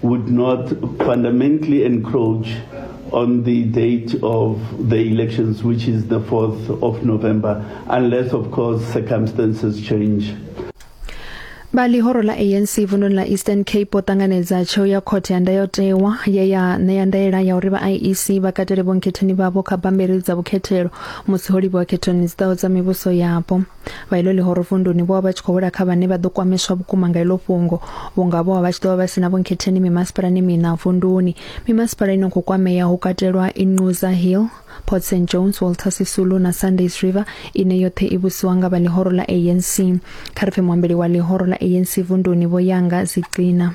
would not fundamentally encroach on the date of the elections, which is the 4th of November, unless, of course, circumstances change. vha ḽihoro ḽa anc vununi ḽa eastern cape vho ṱanganedza tsheo ya khothe ya ndayotewa ye ya ṋea ndaela ya uri vha iec vha katele vhonkhetheni vhavho kha bammbiri dza vhukhethelo musi ho livhiwa khethoni dzi ḓaho dza mivhuso yapo vha ilo ḽihoro vunduni vho vha vha tshi khou wela kha vhane vha ḓo kwameswa vhukuma nga ilo fhungo vhunga vho vha vha tshi ḓo vha vha sina vhonkhetheni mimasipala ni mina vunduni mimasipala ino khou kwamea ho katelwa Inquza Hill Port St Jones Walter Sisulu na Sundays River ine yoṱhe i vhusiwa nga vha ḽihoro ḽa ANC kha ri pfe muambeli wa ḽihoro ḽa ANC vunduni vho yanga Zicina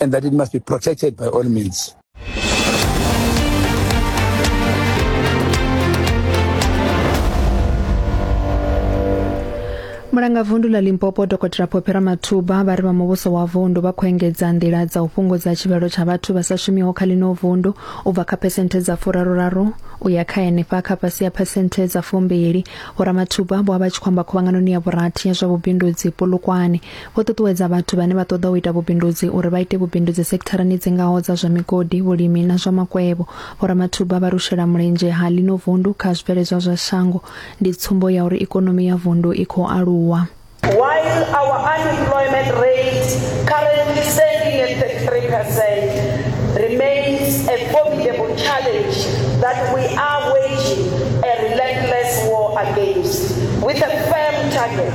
and that it must be protected by all means. mulanga vundu la limpopo dokotela phopera mathuba vha ri vha muvhuso wa vundu vha khou engedza nḓila dza u fhungudza tshivhalo tsha vhathu vha sa shumiho kha ḽino vundu u bva kha phesenthe dza furaruraru u ya kha henefha kha fhasi ya phesenthe dza fumbili vhoramathuba vho vha vha tshi khou amba khuvhanganoni ya vhurathi ya zwa vhubindudzi polokwane Vho ṱuṱuwedza vhathu vhane vha ṱoḓa u ita vhubindudzi uri vha ite vhubindudzi sektharani dzi ngaho dza zwa migodi, vhulimi na zwa makwevho. Vho Ramathuba vha ri u shela mulenzhe ha ḽino vundu kha zwibveledzwa zwa shango ndi tsumbo ya uri ikonomi ya vundu i khou aluwa. While our unemployment rate, currently standing at 33%, remains a formidable challenge that we are waging a relentless war against, with a firm target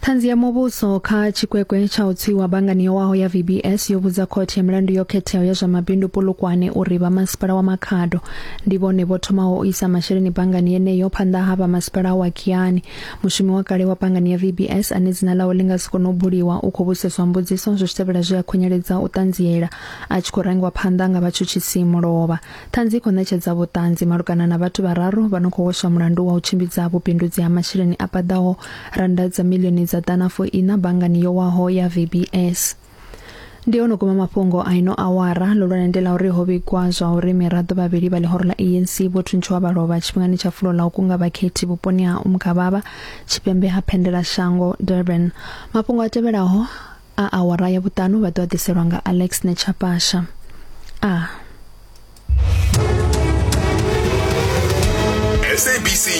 Ṱhanzi ya muvhuso kha tshikwekwe tsha u tswiwa banngani yo waho ya VBS yo vhudza khothe ya milandu yo khetheaho ya zwa mabindu Polokwane uri vha masipala wa Makhado ndi vhone vho thomaho u isa masheleni banngani yeneyo phanḓa ha vha masipala wa Kiani. Mushumi wa kale wa banngani ya VBS ane dzina ḽawe ḽi nga si kone u buliwa u khou vhudziseswa mbudziso zwi tshi tevhela zwe a khunyeledza u ṱanziela a tshi khou rangiwa phanḓa nga vhatshutshisi mulovha. Ṱhanzi i khou ṋetshedza vhuṱanzi malugana na vhathu vhararu vha no khou hweswa mulandu wa u tshimbidza vhubindudzi ha masheleni a paḓaho rannda dza miḽioni dza ḓana fo ina banngani yo waho ya VBS. Ndi ono guma mafhungo a ino awara ḽihulwane ndi ḽa uri ho vhigwa zwa uri miraḓo vhavhili vha ḽihoro ḽa ANC vho thuntshiwa vha lovha tshifhingani tsha fulo ḽa u kunga vhakhethi vhuponi ha Umgababa tshipembe ha Phendelashango, Durban. Mafhungo a tevhelaho a awara ya vhuṱanu vha ḓo ḓiselwa nga Alex Nechapasha a SABC